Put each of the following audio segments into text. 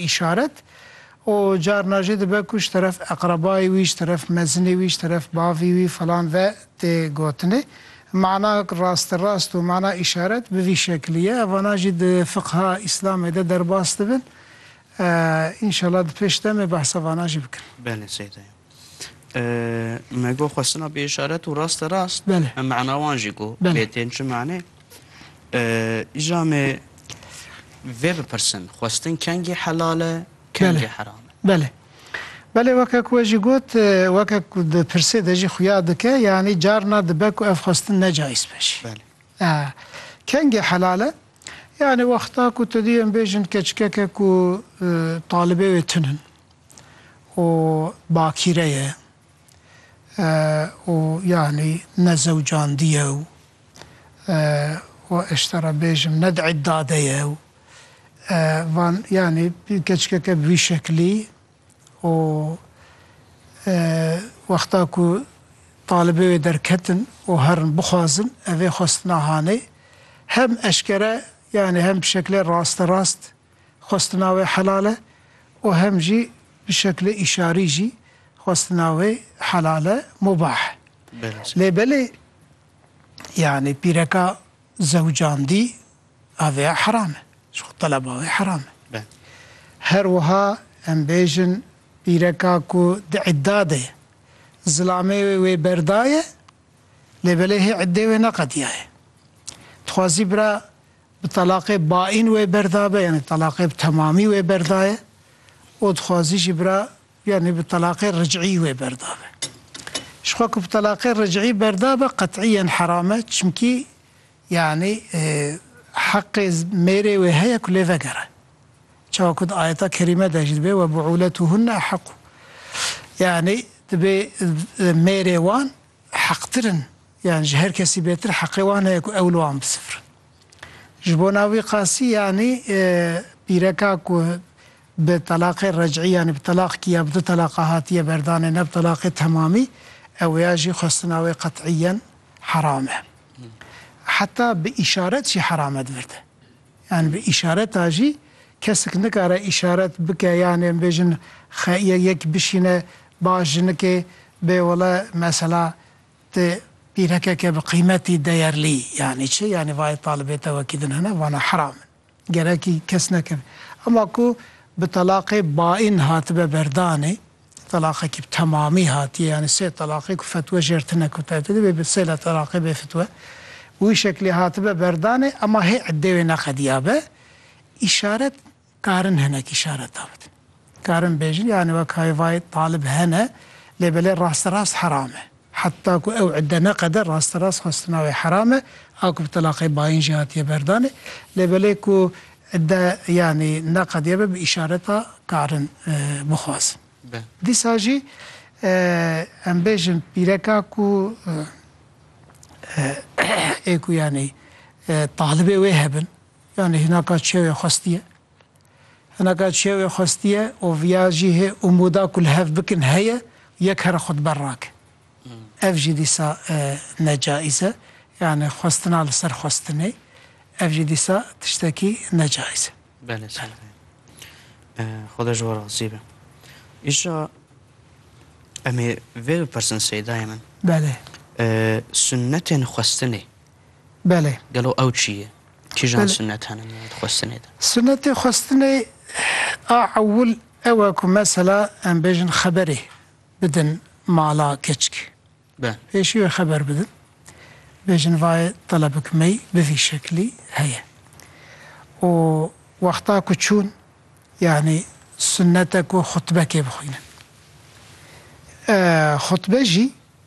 îşaret û carna jî dibe ku ji teref eqrebayê wî, ji teref mezinê wî, ji teref bavî wî filan ve tê gotinê. Mana rasterast û mana îşaret bi vî şeklî ye. Evanan jî di fiqha Îslamê de derbas dibin. Înşallah di pêş demê behsa vanan jî bikin. Belê Seyda Yan. Me got xwestina bi îşaret û raste rast me mena wan jî got lê tên çi manê. Îja me vê bipirsin xwestin kengî helal e kengî heram e. Belê. Belê weke ku we jî got weke ku di pirsê de jî xuya dike yanî carna dibe ku ev xwestin ne cayîz be jî. Belê. Kengî helal e yanî wexta ku tu duyên bêjin keçikeke ku talibê wê tun in. û bakîre ye û yanî ne zewcandî ye û ez ji te re bêjim ne di îdda de ye û van yanî keçikeke bi vî şeklî û wexta ku talibê wê derketin û herin bixwazin ev ê xwestina hanê hem eşkere yanî hem bi şeklê rasterast Xwestina wê helal e û hem jî bi şeklê îşarî jî xwestina wê helal e, mubah e. Lê belê yanî pîreka zewcandî a vê ya heram e. Ji xwe teleba wê heram e. Her wiha em bêjin pîreka ku di îdda de ye, zilamê wê wê berdaye lê belê hê îddê wê neqediyaye. Dixwazî bira Bi telaqê baîn wê berdabe yanî telaqê bi temamî wê berdaye û dixwazî jî bira yanî bi telaqê ricî wê berdabe. Ji xwe ku bi telaqê ricî berdabe qetîyen heram e çimkî yanî heqê mêrê wê heye ku lê vegere. Çawa ku di ayeta kerîme de jî dibe webu'ûletuhunne eheqû. Yanî dibe mêrê wan heqtir in yan ji her kesî bêtir heqê wan heye ku ew li wan bisifirin. Ji bo na wî qasî yanî pîreka ku bi telaqê rec'î yanî bi telaq kî ya bi du telaqa hatiye berdanê ne bi telaqê temamî ew ya jî xwestina wê qet'îyen heram e. Heta bi îşaret jî heram e di vir de. Yanî bi îşareta jî kesik nikare îşaret bike yanî em bêjin xe ye yek bişîne ba jinikê bê wele mesela ti pîrekeke bi qîmetî deyerlî yanî çi yanî vayê talibê te wekî din hene vana heram in gerekî kes nekeve. Ema ku bi telaqê baîn hatibe berdanê. Telaqekî bi temamî hatiye yanî sê telaqê ku fetwe jêr tine ku taybetî dibe bi sê telaqê bê fitwe bi wî şeklî hatibe berdanê ema hê eddê wê neqediyabe îşaret karin hinek îşareta bidin karin bêjin yanî wek hay vay talib hene lê belê rasterast heram e. Heta ku ew idde neqede rasterast xwestina wê heram e, a ku bi telaqê bayîn jî hatiye berdanê. Lê belê ku idde yanî neqediye be bi îşareta karin bixwazin. Dîsa jî em bêjin pîreka ku ê ku yanî talibê wê hebin, yanî hinaka çewê xwestiye. Hinaka çiya wê xwestiye û viya jî hê umûda ku li hev bikin heye yek here xwe di ber rake. Ev jî dîsa ne caiz e. Yanî xwestina li ser xwestinê ev jî dîsa tiştekî ne caiz e. Belê Seyîdê. Xweda ji we razî be. Îşa em ê vê bipirsin Seyîdayê min. Belê. Sunnetên xwestinê. Belê. Gelo ew çi ye? Kîjan sunnet hene li navê xwestinê de? Sunnetê xwestinê a ewil ew e ku mesela em bêjin xeberê bidin mala keçik. Be. Pêşî wê xeber bidin. Bêjin vayê telebik mey bi vî şeklî heye. Û wexta ku çûn yanî sunnet e ku xutbekê bixwînin. Xutbe jî.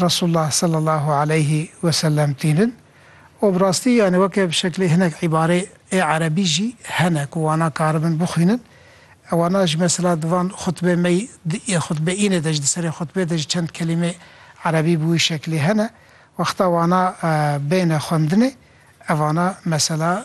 Resulullah sallallahu aleyhi ve sellem tînin û bi rastî yanî weke bi şeklê hinek îbare ê erebî jî hene ku wana karibin bixwînin e wana jî mesela di van xutbe mey di ê xutbe înê de jî di serê xutbê de jî çend kelîmê erebî bi wî şeklê hene wexta wana bêne xwendinê e vana mesela